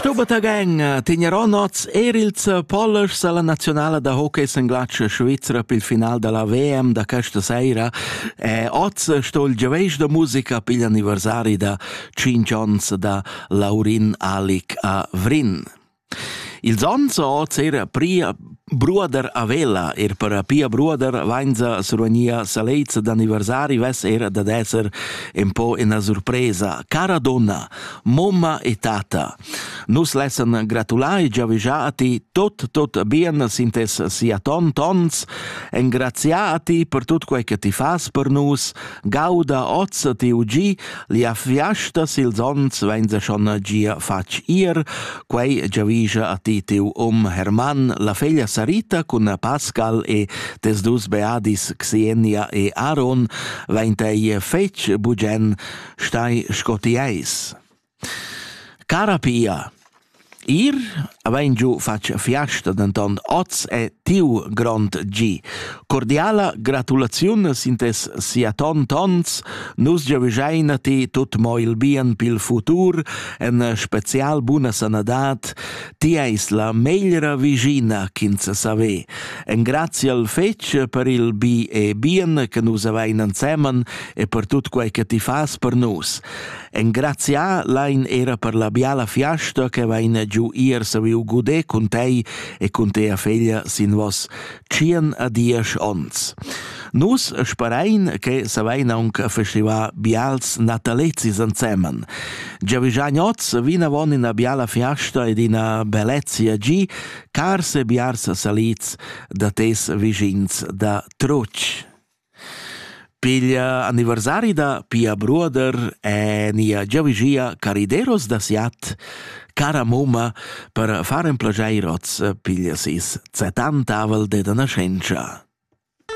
Sto batagen tegnerò noz eir ils pollers alla nazionala da hockey in glatsch Svizra pel final della VM da questa sera e oz sto il giaveisch da musica pigl anniversari da 5 ons da Laurin Alic a Vrin. Ils ons oz era pria Bruoder a vela, eir para pia bruoder, vainza survgnia salets d'anniversari vess era dad esser ün po üna surpresa. Cara donna, momma e tata, nus lessan gratular e giavischar a ti tot, tot bien sintess sia ton tons, engraziar a ti per tut quai che ti fas per nus, gauda oz ti ugi Lia fiasta sil Zons vein se schon gia fatg ir, quei giavischa a ti tiu um Hermann la feglia Sarita cun Pascal e tes dus beadis Xenia e Aaron, vein tei fetg bugen stai sco ti eis. Cara Pia, Ir avain giu fatg fiasta, denton oz è tiu grond gi. Cordiala gratulaziun sin tes siaton tons. Nus giavischein a ti tut mo il bien pil futur, en special buna sanadad. Ti eis la meglra vigina ch'ins save. Engrazia al fetg per il bi e bien che nus avain ensemen e per tut quei che ti fas per nus. Engrazià lain era per la biala fiasta che vaina giu ir saviu guder cun tei e cun tea feglia sin vos tschien a diesch ons. Nus sperain che savein aunc festivar bials natalezis ensemen. Giavigian oz vinavon ina biala fiasta ed ina bellezia gi, cars e biars salids da tes vischins da Truc. Piglia anniversari da pia bruoder e nia giavüschia carideros da siat cara mumma per far ün plaschair hoz piglia seis zett'antavel d'eira naschentscha.